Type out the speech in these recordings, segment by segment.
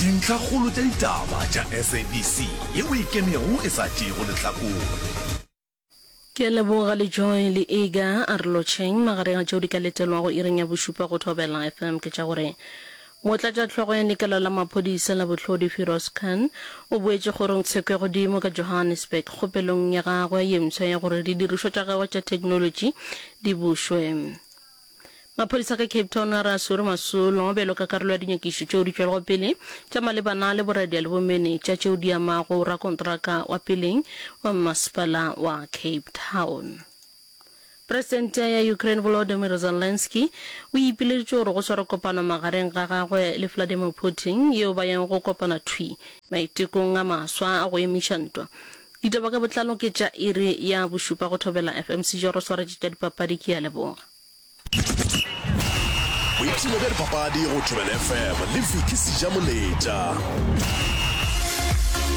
Dintlhakgolo tša ditaba tša SABC ye o e kemego e sa tšeego lehlakore. Ke a leboga le Joy le Ega a re lotšheng. Magareng a tšeo di ka letelwago iring ya bošupa go Thobela FM ke tša gore Motlatšahlogo ya lekala la maphodisa la bohlodi Firoz Khan o boetše kgorong Tshekwegodimo ka Johannesburg kgopelong ya gagwe ye mswa ya gore didirišwa tša gagwe tša theknolotši di bušwe. Maphodisa ka Cape Town a re a swere Masolo bjalo ka karolo ya dinyakišo tšeo di tšwelego pele tša malebana le boradia le bomenetša tšeo di amago rakontraka wa peleng wa mmasepala wa Cape Town. Presidente ya Ukraine Volodymyr Zelensky o ipileditše gore go swarwe kopano magareng ga gagwe le Vladimir Putin yeo ba yeng go kopana thwi maitekong a maswa a go emiša ntwa Ditaba ka botlalo ke tša iri ya bošupa go Thobela FM. Sejoro swaretše tša dipapadi ke a leboga. Boipshino bja dipapadi go Thobela FM le Vicky Sejamoletša.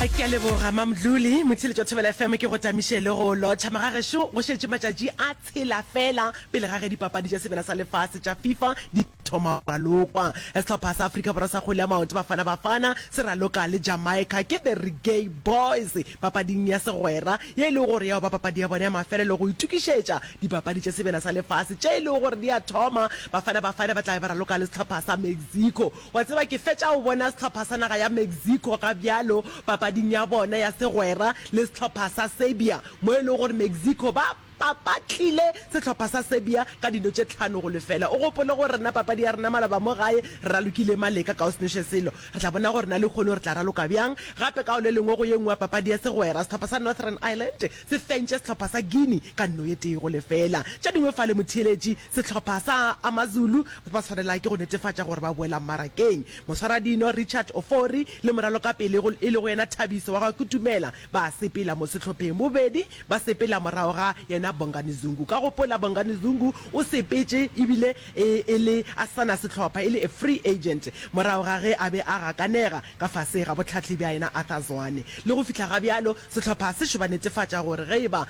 Ke a leboga Mamdluli. Motheletši wa Thobela FM ke go tamiše le go lotšha magagešo go šetše matšatši a tshela fela pele ga ge dipapadi tša sebele sa lefase tša FIFA di Thoma Ralokwa. Sehlopha sa Afrika Borwa sa kgwele ya maoto Bafana Bafana se raloka le Jamaica ke The Reggae Boyz papading ya segwera ye e lego gore ya ba papadi ya bona ya mafelelo go itukišetša dipapadi tša sebina sa lefase tše e lego gore di a thoma. Bafana Bafana ba tlabe ba raloka le sehlopha sa Mexico. Wa tseba ke fetša go bona sehlopha sa naga ya Mexico ga bjalo papading ya bona ya segwera le sehlopha sa Serbia mo e lego gore Mexico ba Papa tlile sehlopha sa Serbia ka dino tše tlhano go lefela. O gopole gore rena papadi ya rena maloba mo gae re ralokile Maleka ka go se nweše selo. Re tla bona gore na lehono re tla raloka bjang gape ka go le lengwe go ye nngwe ya papadi ya segwera. Sehlopha sa Northern Ireland se fentše sehlopha sa Guinea ka no ye tee go lefela. Tše dingwe fale motheeletši sehlopha sa Amazulu ba ba swanela ke go netefatša gore ba boela mmarakeng. Moswaradino Richard Ofori le moralokapele e lego yena Thabiso wa ga Kutumela Ba sepela mo sehlopheng bobedi, ba sepela morago ga yena Bongani Zungu. Ka gopola Bongani Zungu o sepetše ebile e e le a sa na sehlopha, e le a free agent, morago ga ge a be a gakanega ka fase ga bohlahli bja yena Arthur Zwane. Le go fihla ga bjalo sehlopha se šoba netefatša gore ge e ba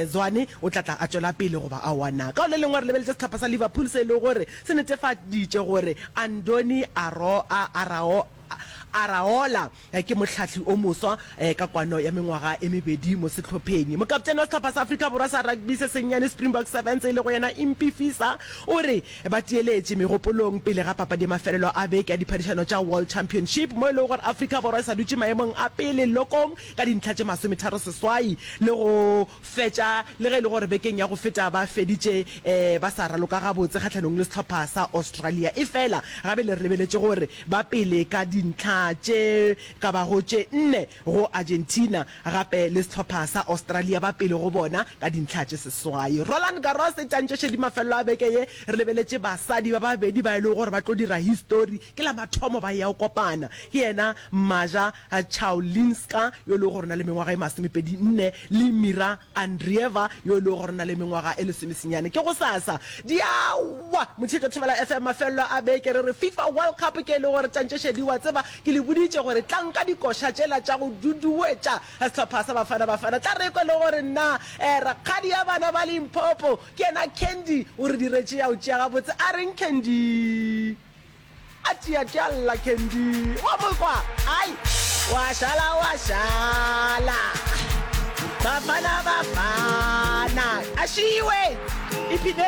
Zwane o tla tla a tšwela pele goba aowa na. Ka go le lengwe re lebeletše sehlopha sa Liverpool se e lego gore se netefaditše gore Andoni Araola Ke mohlahli o moswa ka kwano ya mengwaga e mebedi mo sehlopheng. Mokaptene wa sehlopha sa Afrika Borwa sa rugby se sennyane Springbok Sevens e lego yena Impie Fisa o re ba tiyeletše megopolong pele ga papadi ya mafelelo a beke ya diphadišano tša World Championship mo e lego gore Afrika Borwa e sa dutše maemong a pele lokong ka dintlha tše masometharo seswai le go fetša le ge e le gore bekeng ya go feta ba feditše ba sa raloka gabotse kgahlanong le sehlopha sa Australia. Efela gabe le re lebeletše gore ba pele ka dintlha tše ka bago tše nne go Argentina, gape le sehlopha sa Australia ba pele go bona ka dintlha tše seswai. Roland Garros e tantšešedi mafelelo a beke ye, re lebeletše basadi ba babedi ba e lego gore ba tlo dira histori ke la mathomo ba eya go kopana, ke yena Maja Chaulinska yo e lego gore o na le mengwaga e masomepedi nne le Mira Andreeva, yo e lego gore o na le mengwaga e lesomesenyane. Ke gosasa. Diawa! Motšheco Thibela FM, Mafelelo a beke re re Fifa World Cup ke e le gore tšantšešedi wa tseba ke le boditše gore tlang ka dikoša tšela tša go duduwetša sehlopha sa Bafana Bafana. Tla re kwa le gore nna eh rakgadi ya bana ba Limpopo ke yena Candy o re diretše ya o tšea gabotse a reng Candy? A tšea tša lla Candy. Wa mo kwa? Ai. Wa šala wa šala. Bafana bafana. A šiwe. Ipine.